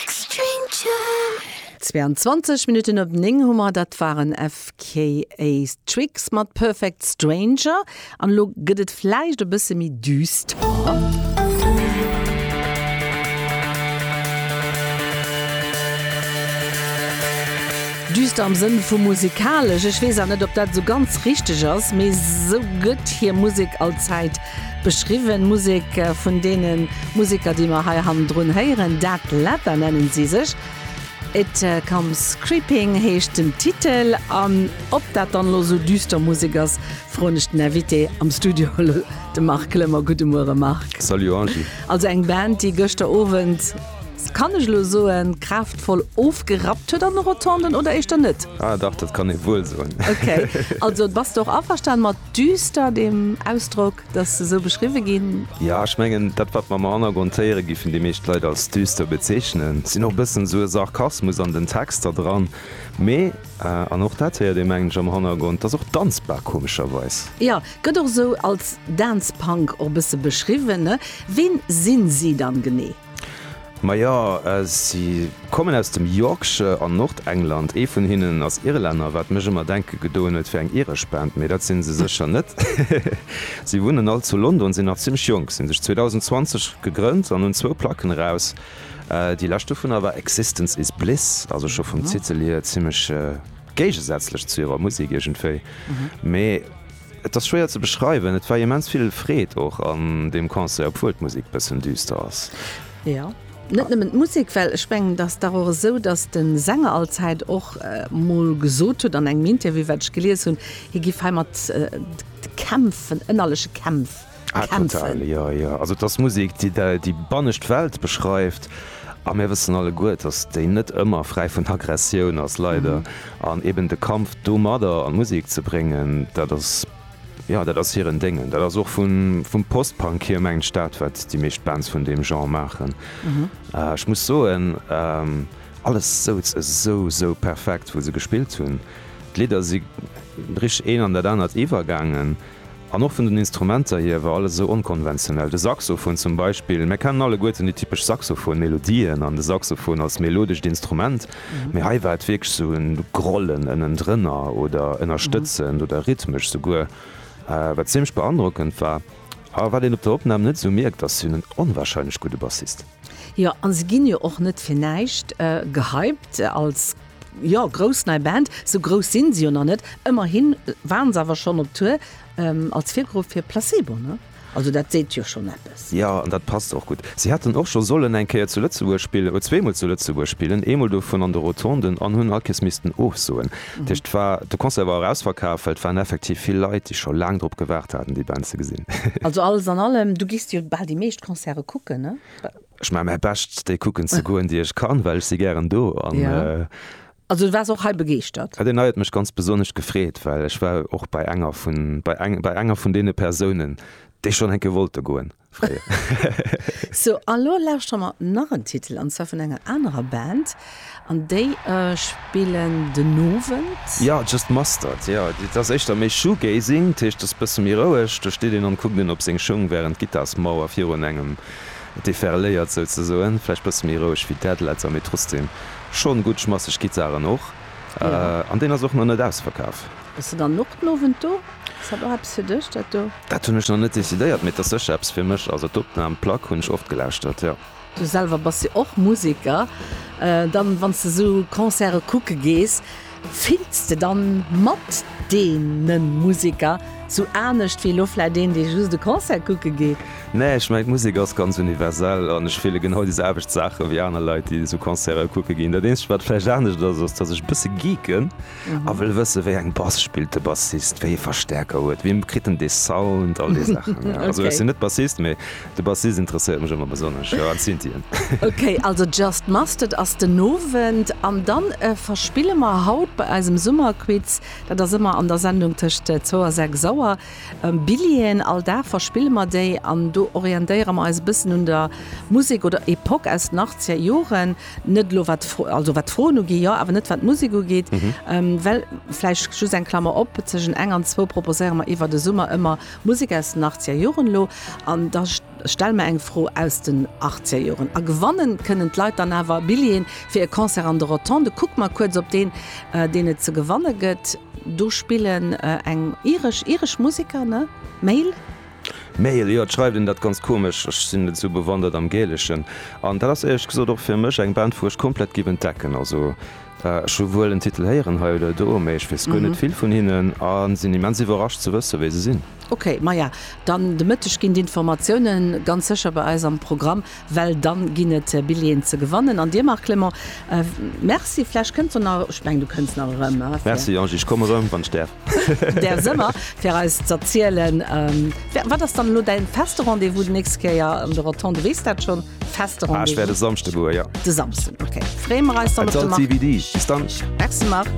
Extreme Jam. 22 Minutten op 9 hu mer, dat waren FKA Twigs mat Perfect Stranger an elo gëtt et vläicht e bësse méi düster. Düster am Sënn vu musikalesch, ech weess awer net, ob dat esou ganz richteg ass, mee esou gëtt hir Musek allzäit Beschriwwen Musek vun deene Museker, déi mer hei hannendrun héieren, Dead Leather nennen si sech. It Comes Creeping heescht den Titel. An ob dat dann elo esou düster Musek ass, froen ech den Invité am Studio, de Marc Klemmer. Gudde Muere Marc. Salut Angie. Also eng Band, déi gëschter Owend, kann ech elo soen, kraaftvoll ofgerappt huet an de Rotonden, oder éischter net? Ah dach, dat kann ee wuel soen. Okay, also bass de och averstanen mat. Düster dem Ausdrock, datt se esou beschriwwe ginn? Jo, ech mengen, dat wat mer am Hannergrond héiere giffen déi meescht Leit als düster bezeechnen, sinn och e bëssen esou e Sarkasmus an den Texter dran. Mee, an och dat héiert ee mengen ech am Hannergrond, ass och danzbar komescherweis. Jo, gëtt och esou als Dance Punk och e bësse beschriwwen. Ween sinn si dann genee? Majo, si kommen aus dem Yorkshire an Nordengland. Ee vun hinnen ass Irlänner, wat mech ëmmer denke gedoen huet fir eng iresch Band, mee dat sinn se sécher net. Si wunnen all zu London, sinn nach zimmlech jonk, sinn sech 2020 gegrënnt an hunn zwou Placken eraus. Déi lescht dovunner war Existence Is Bliss, also scho vum Titel hier zimmlech géigesätzlech zu hirer Musek iergendwéi, mee. Et ass schwéier ze beschreiwen, et war immens vill Freed och an deem Concert, obwuel d'Musek bëssen düster ass. Jo, net nëmmen d'Musek, well ech mengen et ass dach och esou, datt de Sänger allzäit och mol gesot huet an engem Interview, wat ech gelies hunn, hie giff heimat kämpfen, ënnerleche Kämpf. Ah total, jo jo. Also et ass Musek déi déi bannescht Welt beschreift a mir wëssen alleguer, datt déi net ëmmer fräi vun Aggressioun ass, leider. An eben de Kampf domadder an Musek ze bréngen, dat ass, jo dat ass hiren Déngen. Dat ass och vu vum Post-Punk hier mengen ech dat wat déi meescht Bands vun deem Genre maachen. Ech muss soen, alles souz esou esou perfekt wou se gespillt hunn. D'Lidder si richteg een an dat anert iwwergaangen. An och vun den Instrumenter hier war alles esou onkonventionell. De Saxofon zum Beispill, mär kennen alleguerten déi typesch Saxofon-Melodien an de Saxofon als melodescht Instrument, mee hei war et wierklech esou e Grollen ënnendrënner oder ënnerstëtzend oder rhythmesch souguer, wat zimmlech beandrockend war a wat een op der Opnam net esou mierkt, ass hien en onwahrscheinlech gudde Bassist. Jo, a se ginn jo och net fir näischt gehypt als. Jo, grouss nei Band, sou grouss sinn se jo nach net, ëmmerhi waren se awer schonn op Tour als Virgrupp fir Placebo, ne? Also dat seet jo schonn eppes. Jo, an dat passt och gutt. Si hätten och scho sollen eng Kéier zu Lëtzebuerg spillen, oder zweemol zu Lëtzebuerg spillen, eemol dovun an de Rotonden, an hunn all Kees missten ofsoen. Dat heescht, et war, de Concert war och ausverkaf, well et waren effektiv vill Leit, déi scho laang drop gewaart haten, déi Band ze gesinn. Also alles an allem, du gees jo bal déi meescht Concerte kucken, ne? Ech man mäi Bescht déi kucken ze goen déi ech kann, well ech si gären do an. Yeah. Also du wars och hei begeeschtert? Ja, deen hei huet mech ganz besonnesch gefreet, well ech war och bei enger vun, bei eng, bei enger vun deene Persounen, déi schonn eng Kéier wollte goen fréier. Sou, a lo lauschteren mer nach en Titel, an zwar vun enger anerer Band. An déi spillen den Owend? Jo, Just Mustard, jo. Et ass éischter méi Shoegazing, dat heescht et ass e bësse méi roueg. Do steet een an kuckt een op seng Schung, wärend d'Gittarsmauer virun engem deferléiert souzesoen. Vläicht e bësse méi roueg wéi Deadletter, mee trotzdem schonn gutt schmasseg Gittaren och. An deen ass och nach net ausverkaf. Bass de dann och den Owend do? Ass dat och eppes fir dech, dat do? Dat hunn ech nach net decidéiert, mee et ass sécher eppes fir mech. Also d'Opnam, d'Plack hunn ech oft gelauschtert, jo. Du selwer bass jo och Museker. Dann, wann s de esou Concerte kucke gees, fills de dann mat deene Museker esou anescht wéi elo vläicht een, dee just e Concert kucke geet? Nee, ech mengen, d'Musek ass ganz universell an ech fille genau déi selwecht Saache wéi aner Leit, déi esou Concerte kucke ginn. Dat eenzegt, wat vläicht anescht ass, ass, datt ech e bësse geeken. a wëll wësse wéi eng Bass spillt de Bassist, wéi ee Verstäerker huet, wéi kritt en dee Sound, all déi Saachen. Also ech sinn net Bassist, mee de Bassist interesséiert mech ëmmer besonnesch, jo an d'Synthien. Ok, also Just Mustard ass den Owend an dann verspille mer haut bei eisem Summerquiz, dat ass ëmmer an der Sendung tëscht zwou a sechs Auer, Billjeeën. All Dag verspille mer déi an do orientéiere mer eis e bëssen un der Musek oder Epoque aus den Achtzegerjoren. Net elo wat d'Fro, also wat d'Froen ugeet jo, awer net wat d'Musek ugeet, well, vläicht just eng Klammer op, tëschent eng an zwou proposéiere mer iwwer de Summer ëmmer Musek aus den achtziger Joren elo an da stelle mer eng Fro aus den achtziger Joren. A gewannen kënnen d'Leit dann awer Billjeeën fir e Concert an de Rotondë. Kucke mer kuerz op deen, deen et ze gewanne gëtt. Do spillen eng iresch, iresch Museker, ne? Mail. Mail, jo, et schreift een dat ganz komesch, ech sinn net esou bewandert am Gäleschen an dat ass éierlech gesot och fir mech eng Band wou ech komplett giff entdecken. Also ech hu wuel en Titel héieren hei oder do, mee ech weess guer net vill vun hinnen a sinn immens iwwerrascht ze wësse wie se sinn. Ok, maja dann de Mëtteg ginn d'Informatiounen ganz sécher bei eis am Programm. well dann ginn et Billeten ze gewannen an dir Marc Clement merci, vläch kënns de nach, ech mengen du kënns nach erëm, hä? Merci Angie, ech kommen erëm wann ech däerf. Däerfs ëmmer, fir eis z'erzielen wat ass dann elo däin feste Rendez-vous déi nächst Kéier an de Rotonden, weess dat schonn? Feste Rendez-vous? Ah ech wäert e Samschde goen, jo. De Samschden, ok, freeë mer eis dann op de Marc. That's all TBD, bis dann. Merci Marc.